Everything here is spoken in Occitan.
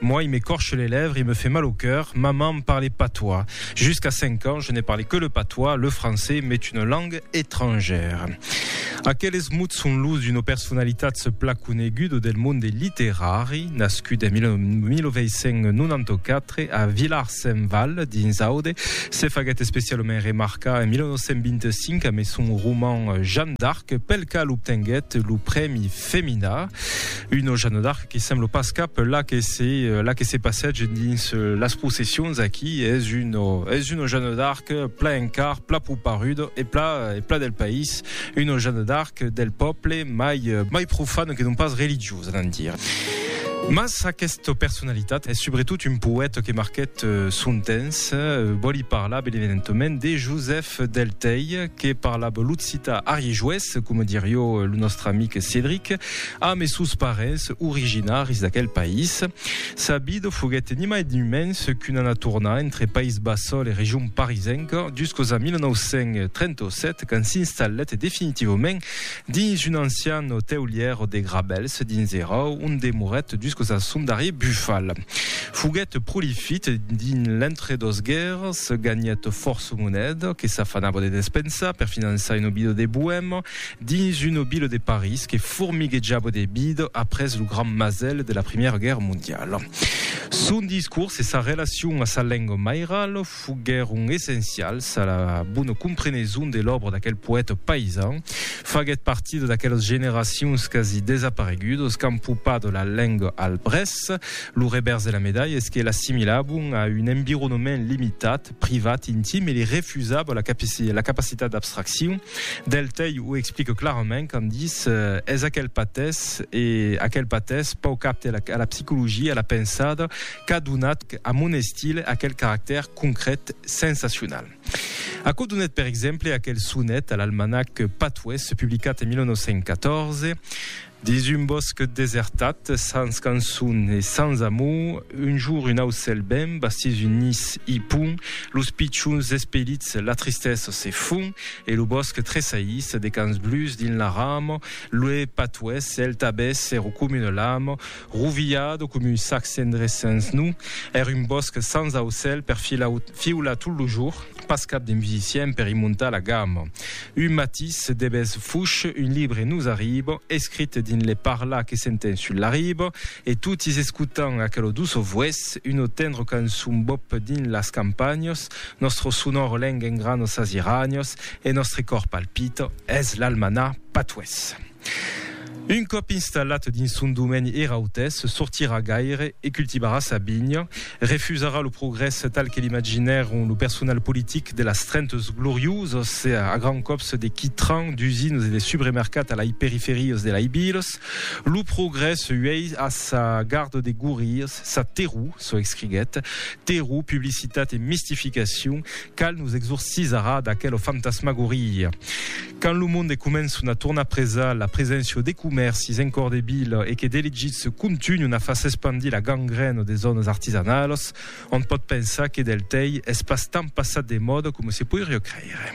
Moi, il m'écorche les lèvres, il me fait mal au cœur, maman parle patois. Jusqu'à cinq ans, je n'ai parlé que le patois, le français m'est une langue étrangère. Aqueles mots son los d'una personalitat plan coneguda del monde literari, nascut en 1994 a Vilar-Saint-Val, dins Aude, se faguèt especialament remarcar en 1925 amé son roman Jeanne d'Arc, pel qual obtenguèt lo prèmi Femina, una Jeanne d'Arc, que sembla pas cap la que se la que se passège dins las processions aquí es un es un Jeanne d'Arc pla encar pla proparudo e pla e pla del país un Jeanne d'Arc del pòble mai mai profan que non pas religiosa d'en dir mas aquesta personalitat es subretot un poèt que marquèt son temps vòli parlar ben evidentament de Joseph del Tei que parlava l'occita ariéjoés coma dirió lo nòstre amic Cédric Amb es sòus parents originaris d'aquel país, Sabido foguèt ni mai ni mens qu'una naturna entre País Bassol e region parisenca juscos a 1937 quand s'installèt definitivament dins un ancian oteulièr de Grabèls dins era ont demorèt juscos a son darrier bufal. Foguèt prolifit dins l'entre dos guèrras, ganhèt fòrça moneda que s'afanava de despensar per finançar un obido de boèma, dins un obilo de París que formiguejava de vida après lo grand masèl de la Primièra Guèrra Mondiala. Son discors e sa relacion a sa lenga mairala foguèron essencials a la bona compreneson de l'òbra d'aquel poèta paisan. Faguèt partida d'aquelas generacions quasi desaparegudas qu'an popat la lenga al Brès. Lo revèrs de la medalha es que l'assimilavan a un environament limitat, privat, intim, e li refusava la capaci la capacitat d'abstraccion del tei, o explique clarament quand dis, es aquel patès, e aquel patès pauc apte a la a la psicologia, a la pensada, qu'a donat a mon estil aquel caractèr concret, sensacional. Aquò donet per exemple aquel sonet a l'almanac Patois, publicat en 1914, Dins un bòsc desertat, sens cançon e sens amor, un jour un aucèl ben bastís un nis i pon los pichons espelits, la tristesa se fon e lo bòsc tresaís de cans blus dins la rama, l'ue patuès, el tabès se recomina l'ama, Rovilhado com un sac cendrés sens nu, er un bòsc sans aucèl per fiular tot lo jour, pas cap de musicien per i montar la gamma. Un matís de bes fuch un libre nos arriba, escrit dins le parlar que sentem sul la riba, e totis escotam aquelo doço vues, uno tendro cançon bop dins las campanhas, nostro sonor lenga engrana sas iranias e nostre còr palpita, es l'almanà patués. Un còp installat dins son domeni er autès sortirà gaire e cultivarà sa vinha, refusarà lo progrès tal que l'imaginèron lo personal politic de las Trentes Glorioses a grands còps de quitrans, d'usinas e de subremercats a lai periferias de lai vilas. Lo progrès uèi a sa garda de gorrias, sa terror, çò escriguèt. Terror, publicitat e mistificacion, cal nos exorcisarà d'aquela fantasmagoria. Quand lo monde començon a tornar presar la preséncia de comèrcis en còr de vila e que d'elegits contunhon a far s'espandir la gangrèna de zònas artisanalas, on pòt pensar que del tei es pas tant passat de mòda coma se poiriá creire.